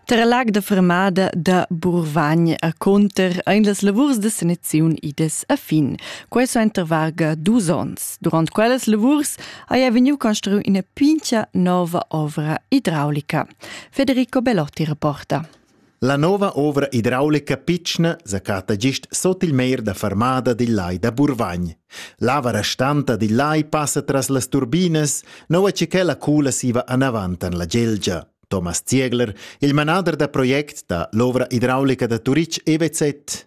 Tar lag da fermada da Burvagn a Conter ein las lavurs de saniziun idas a fin. Quei so enter varga dus onns. Durant quellas lavurs haja vegniu construiu ina pincha nova ovra idraulica. Federico Belotti rapporta. La nova ovra hidraulica pitschna zacata gist sut il mer da fermada dil lai da Burvagn. L'ava restanta dil lai passa tras las turbinas, nua che quella cula siva anavant en la Gelgia. Thomas Ziegler, il manader da project da l'ovra hidraulica da Turitg EWZ.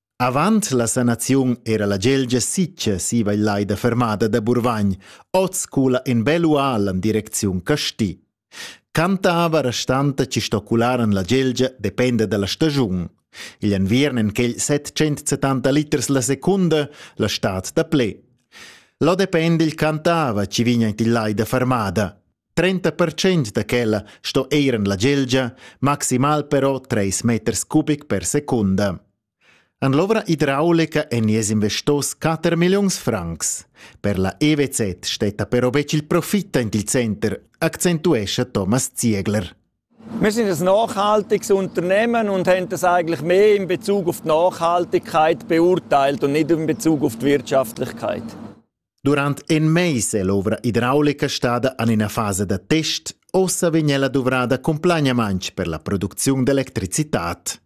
Avant la sanaziun era la gelgia sitga siva il lai da fermada da Burvagn, oz cula in bel ual en direcziun Casti. Cantava restanta ci stocularan la gelgia dependa dalla stagiun. Igl enviern en quel 770 liters la secunda la stad da ple. Lo depende il cantava ci vigna il lai da fermada. 30% da quella sto eir en la gelgia, maximal però 3 meters cubic per secunda. An l'ovra idraulica en nies investos 4 milliuns francs. Per la EWZ stetta però bec il profit in il center, accentuescha Thomas Ziegler. Wir sind ein nachhaltiges Unternehmen und haben das eigentlich mehr in Bezug auf die Nachhaltigkeit beurteilt und nicht in Bezug auf die Wirtschaftlichkeit. Durant in mais è l'ovra idraulica stada en ina fasa da test. Ossa vegn ella duvrada cumplagnamain per la producziun d'electricitad.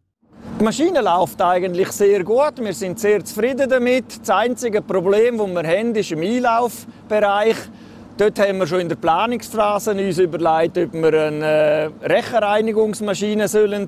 Die Maschine läuft eigentlich sehr gut. Wir sind sehr zufrieden damit. Das einzige Problem, das wir haben, ist im Einlaufbereich. Dort haben wir schon in der Planungsphase uns überlegt, ob wir eine äh, Rechenreinigungsmaschine sollen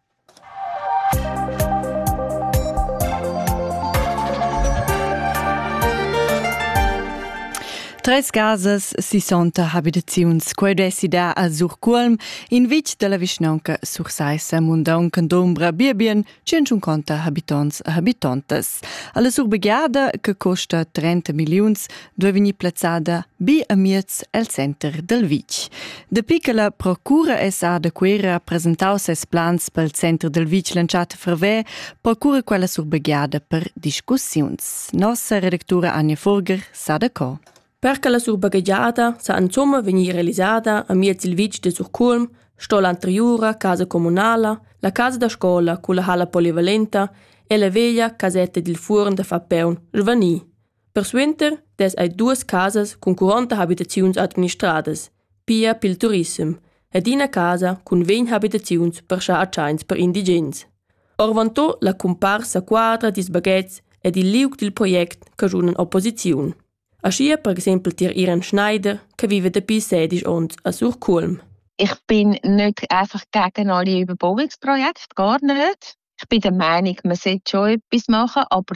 Tres casas sissonta habitaziuns, quei dessi da a Surcuolm, in vitg dalla vischnaunca Sursaissa, mundaunca d'ombra biebien, 150 habitonts e habitontas. Alla surbegiada, che costa 30 milliuns, duei vegnir plazzada bi amiez el center dal vitg. Dapi che la procura SA da Cuera ha presentau ses plans pel center dal vitg l'entschatta ferver, procura quella surbegliada per discussiuns. Nossa redactura Anja Furger sa da co. Per che la surbagegiada sa insomma vegnir realisada a miez il vitg de Surculm, sto l'anteriura casa comunala, la casa da scola culla hala polivalenta e la veglia casetta dil fuorn da Fapeun, svanir. Persuenter dess ei duas casas cun curonta habitaziuns administradas, pia pil turissem, ed ina casa cun vegn habitaziuns per schar tscheins per indigens. Orvantò la cumparsa quadra dils baghetgs ed il liug dil project caschun opposiziun. Aschia per exempel tier Iren Schneider, che vive dapi sedisch onns a Sur Cuolm. Ich bin nicht einfach gegen alle Überbauungsprojekte, gar nicht. Ich bin der Meinung, man sollte schon etwas machen, aber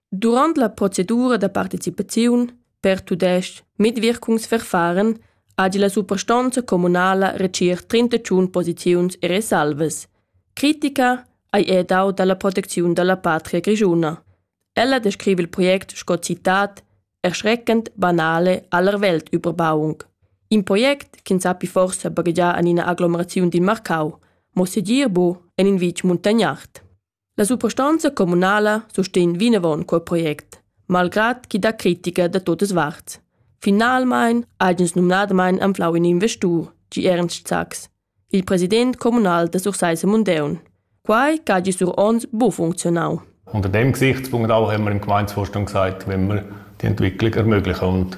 Durant la procedura da participaziun per tudestg Mitwirkungsverfahren ha gie la suprastonza communala retschiert 31 posiziuns e resalvas. Critica ei era dau dalla protecziun dalla patria grischuna. Ella descrive il project sco citat erschreckend banale aller Welt Überbauung. In project ch'ins sappi forsa baghegiar en ina aglomeraziun dil Marcau, mo segir bu en in vitg muntagnard. La suprastonza communala sustegn vinavon quel project, malgrad ch'i dà critica da totas varts. Finalmein hagens numnadamain anflau in investur, gi Ernst Sachs, il president communal da Sursaissa Mundeun. Quai che hagi sur ons bu funzionau. Unter dem Gesichtspunkt auch haben wir im Gemeindevorstand gesagt, wenn wir die Entwicklung ermöglichen und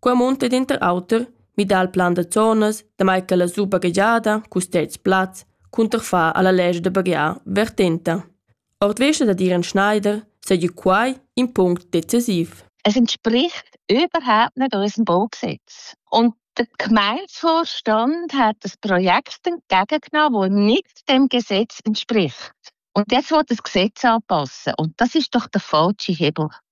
Quei munta denter auter midar il plan da zonas, damai che la supa gagiada custez plaz cunterfar alla legge da baghiar vertenta. Ord vesta da dir an Schneider seigi quai in punct decisiv. Es entspricht überhaupt nicht unserem Baubesitz. Und der Gemeindevorstand hat das Projekt entgegengenommen, das nicht dem Gesetz entspricht. Und jetzt will das Gesetz anpassen. Und das ist doch der falsche Hebel.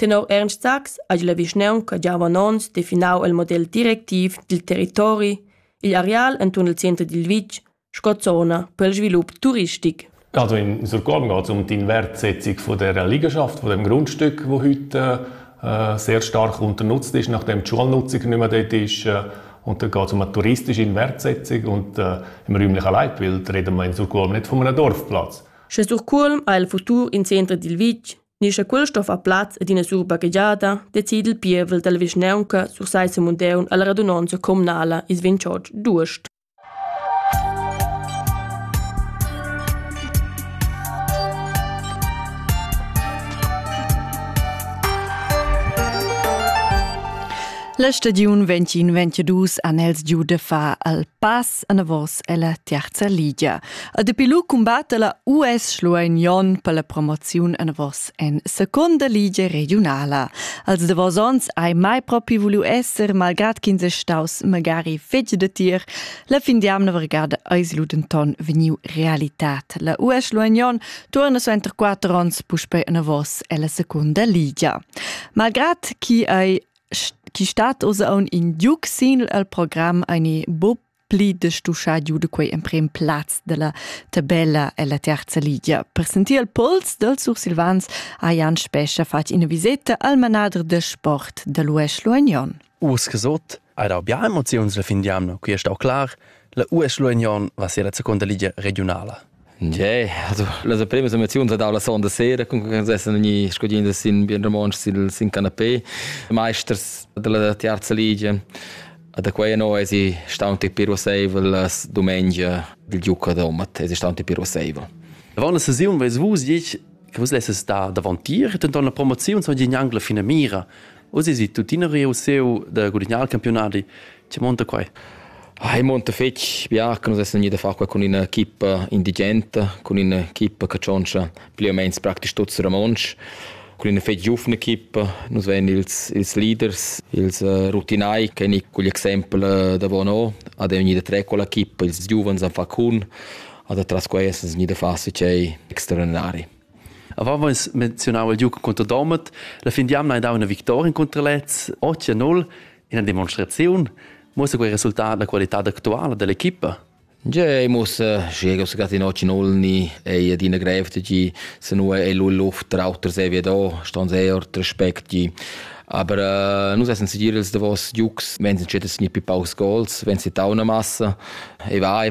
Tenor Ernst Sachs hagi la vischnaunca gia avon onns definau il model directiv dil territori igl areal entuorn il center dil vitg sco zona per il svilup turistic. Also in Surkorn geht es um die Wertsetzung von der Liegenschaft, von dem Grundstück, wo heute äh, sehr stark unternutzt ist, nachdem die Schulnutzung nicht mehr dort ist. Äh, und dann geht es um eine touristische Inwertsetzung und äh, im räumlich allein, weil reden wir in Surkulm nicht von einem Dorfplatz. Sche Surkulm ha il futur in centro dil vitg, Ni sche quella sto far plaz ad ina surbaghegiada, decide il pievel dalla vischnaunca sur sai Semundeun alla radunonza communala is 28 d'uost. La stagiun 2022 an els giu de fa al pass anavos ella terza ligia. A dapi lu cumbatta la US Schlueignon per la promoziun anavos en seconda ligia regionala. Als davos ons hai mai propi vulu esser, malgrad ch'ins è staus magari fetg de tir, la fin d'amna vargada eis lu denton vegniu realitat. La US Schlueignon torna suenter quatter ons puspei anavos ella seconda ligia. Malgrad chi ei chi stat oz aun in giuc sin el program ani bo pli de stuschà giu de quei emprem plaz della tabella ella terza ligia. Per sentir il pols del Sursilvans ha Jan Spescha fatg ina viseta al manader de sport de l'UES Luagnon. Us gesot, hai dau bia emoziuns la fin di anno, qui è stau clar, la US Luagnon va ser la seconda ligia regionala. Jee, also las primas emoziuns dau la sonda sera, cun che sessen gnir scudiendas in bien romontsch sil sin canapé. Maesters della tiarza ligia. Da quei no esi staunti piroseivel las dumengia dil giuca domat, esi staunti piroseivel. Avant la sesiun veis vus ditg che vus lesses star davantier, denton la promoziun so gnanc la fina mira. Oz esi tuttina reusseu da gudignar il campiunadi. Che monta quai? Ah, ei monta fetg bia che nus essan iu da far qua con ina equipa indigenta, con ina equipa che tschontscha pli o meins praktisch tuts romontsch, con ina fetg giufna equipa. Nus vein ils, ils leaders, ils uh, rutinai, che ni cugl exempel uh, da Bono, ad è vegnida tre con l'equipa, ils giuvens han fa cun, ad atras quei essan vegnida far sicei extraordinari. Avant veis menzionau il giug contro Domat. La fin d'jamna hai dau ina victoria contro Lez, 8-0, ina demonstraziun. Muossa quei resultat la qualitad actuala dell'equipa? Ge, muss Diego Segatti no Cinolni ei adina grev tgi se nu ei lu Luft trauter se wie da ston sehr respekt gi aber uh, nus essen segir els davos giugs wenn sie chettes ni pi paus goals wenn sie tauna massa e vai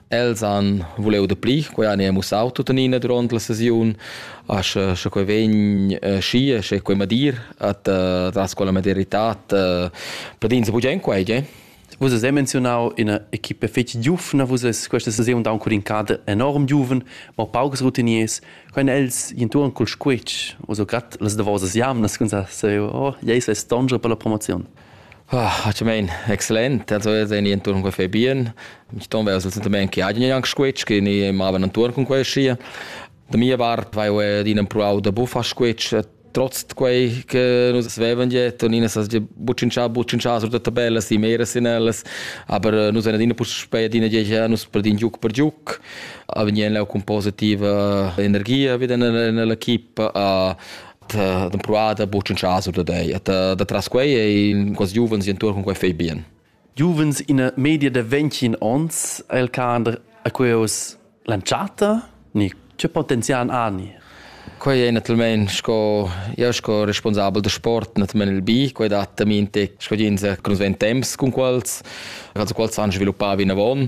Els han vuliu dapli, quei han ei mussau tuttenina duront la sesiun, a sche, sche quei vegn eh, schi, sche quei madir at eh, das quella madiritad eh, pedins bugen en quei, eh? Vus hai menzionau ina equipa fetg giuvna, vus es questa sesiun da un curincada enorm giuven, ma paucs routiniers. Quen els intuan col squitsch, o so grad las davosas jamnas, cun sa, se, oh, ei se stonge per la promozion. Ah, actualmein excellent. Also io tegn intuorn quei fai bien. Mi ston ver semplamein che hagien anc squetsch, che ni mavan intuorn cun quei schia. Da mia part vai eu adina empruau da buffar squetsch. Trotz quei che nus vevan jet, nina sa buccincià, buccincià sur da tabellas e mera sin ellas, aber nus ein adina puspei adina jet nus perdin giuc per giuc. Avegnien leu cun positiva energia vid in l'equipa a d'empruar da buc in chaso da dei et da tras quei ei quasi giuvens entuorn con quei fei bien giuvens in media de 20 ons el cader a queus lanciata ni che potenzian ani Quei è naturalmente sco io sco responsabel da sport naturalmente il bi, quei dat también te sco jins che nos ven temps con quels, also quels han sviluppavi in avon.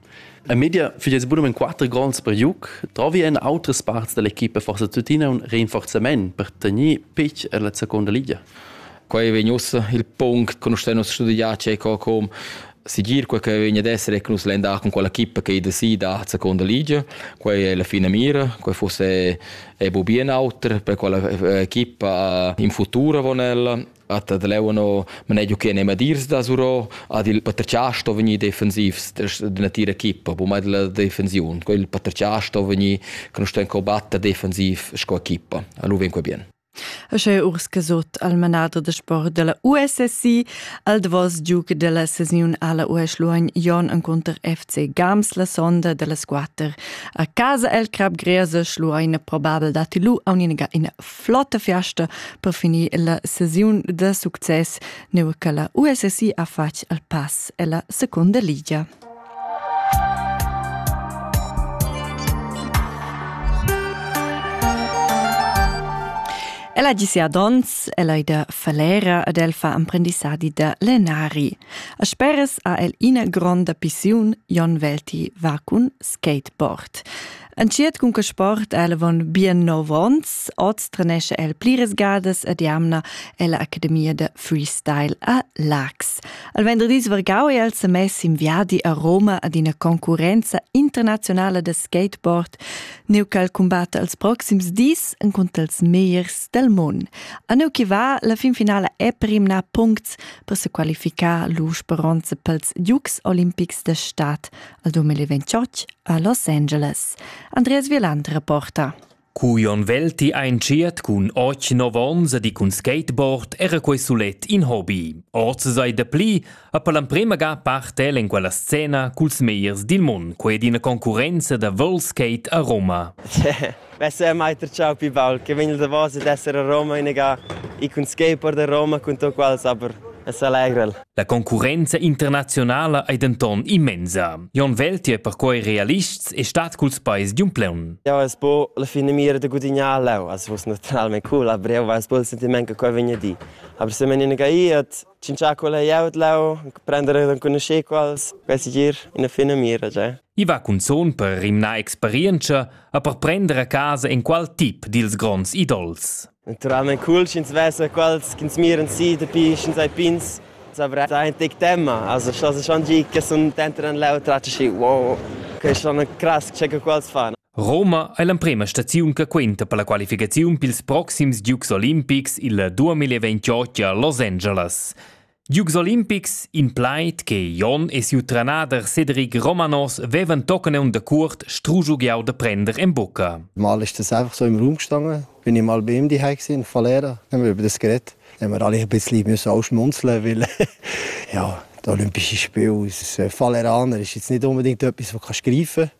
A media fich es bunamain quatter gronds per juc. Trovi en autras parts da l'equipa forsa tuttina un rinforzament per tegner pitch en la seconda liga. Qua vegn ussa il punct che nus temus studià Ceco com sigir quel che vegn ad essere che nus l'en da con quella equipa che da si da seconda liga quei è la fine mira quei fosse è bu bien auter per quella equipa in futuro von ella At ad leuano manegiu che ne madirs da Suro ad il paterciar sto vegni defensivs de natira equipa, bu mai della defensiun, co il paterciar sto vegni con sto combatta defensiv sco equipa. Allu ven qua bien. E sche Urske sot al manader de sport della USSI al davos giuc della sesiun alla USLuogn Jon en counter FC Gams la sonda della squatter a casa el crab grese Schluein probabel dati lu a un'ina flotta fiasta per finir la sesiun da success neu che la USSI ha fatg al pass ella seconda ligia. Ella gisi ad ons, ella ida falera ad el fa emprendissadi da lenari. A speres ha el ina gronda pissiun Jon Velti va cun skateboard. Entschiet cun che sport el von bien nov ons, oz trenesce el pliras gadas ed jamna ella Academia de Freestyle a Lax. Al venderdis vargau è el se mess in viadi a Roma ad ina concurenza internazionale de skateboard, neu ch'el combatta els proxims dis en contra els meiers del mund. A neu che va, la fin finale è primna puncts per se qualificar l'usperonze pels Dukes Olimpics de Stadt al 2028 a Los Angeles. Andreas Wieland reporta. Cu Jon Velti einschiert cun 8-9 ons e di cun skateboard era quei sulet in hobby. Oz sei de pli a per l'emprema ga partel in quella scena culs meiers dil mund, quei è d'ina concurenza da world skate a Roma. Besser mai tratschau pli baul che vegn davos ed esser a Roma inagà e cun skateboard da Roma cun to quals aber es allegrel. La concurrenza internazionala ei denton immensa. Jon Welti è perquei realists e stat culs peis di un pleun. Ja, es bo la fine mira de gudignar leu, as vus naturalmente cool, aber eu weiß bo il sentiment che quei vegna di. Aber se men in gai et Cinciar quella glieud lau, prender ed enconuscher quals, quasi gir ina fina mira già. I va cunzun per rimnar experientscha e per prender a casa in qual tip dils gronds idols. Naturalment cool, sch'ins vesa quals ch'ins miran si dapi sch'ins hai pins. Savrà è ein tic tema, also schloss schon gi che sun dentro an leu tracci, wow, che schon cras che quals fan. Roma è l'emprema staziun che quenta per la qualificaziun pils proxims Dukes Olimpics il 2028 a Los Angeles. Dukes Olimpics, in plaid che Jon e siu trenader Cedric Romanos vevan tochen un dacurt strugiu giau da prender en bucca. Mal ist das einfach so im Raum gestanden, bin ich mal bei ihm die gesehen, von Lehrer, dann haben wir über das geredet. Dann haben wir alle ein bisschen müssen ausschmunzeln, weil ja, die Olympische Spiele aus Falleraner ist jetzt nicht unbedingt etwas, was du greifen kannst.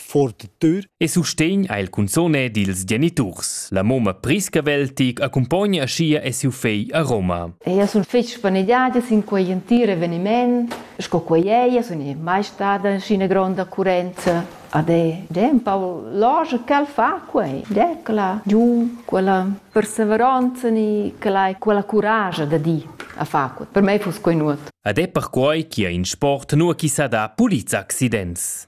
fortitür. E sustegn ha il cunzone dils geniturs. La moma Priscavel tic accumpogna aschia e siu fegl a Roma. Io sun fich spaneggiada sin quei entir eveniment, sco quei ei, sun i mai stada scina gronda occurenza. Ad è, Paul, loge quel fa quei, decla giu quella perseveronza ni quella, quella courage da di a fa quei. Per me fuss quei nuot. Ad è perquei che in sport nua chi sa da puliza accidents.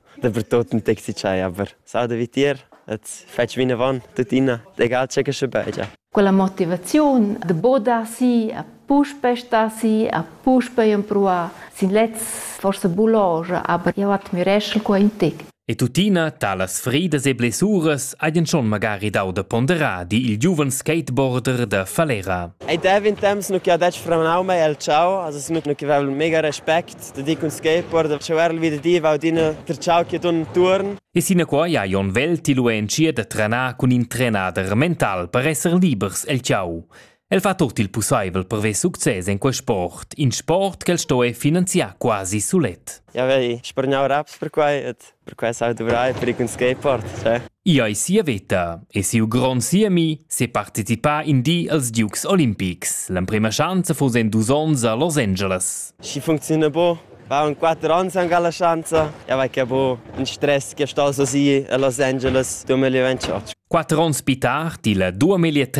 Dapertut ün taxi dschai aber s'auda vitier, et fatsch vinavon tuttina, egal che che sche beigia. Quella motivaziun de bodar si a puspe sta si a puspe empruar sin lez forse buloge, aber jau admireschel qua in tic. E tuttina talas fridas e blessuras hajan schon magari dau da ponderar, di il giuven skateboarder da Falera. Ei dev in temps nu che ha detg franau mei el ciao, also nu che vevel mega respect Sta di cun skateboard a chauer il vita diva adina per chau che ton tuorn. E sinaquai ha Jon Well tiluentschier da trenar cun in trenader mental per esser libers el chau. El fa tut il pussaivel per ver success en quel sport, in sport ch'el sto finanziar quasi sulet. Ja, vei, spargnau raps per quai et Per questo hai dovrai per un skateboard, cioè. I ei sia veta e siu grond siemi separticipà in di als Dukes Olimpics. L'emprema schanza fu en dus onns a Los Angeles. Si funziona bo. War in quattro anni anche la chance. Ja, perché bo un stress che sto so sì a Los Angeles 2028. Quattro anni più tardi, il 2030,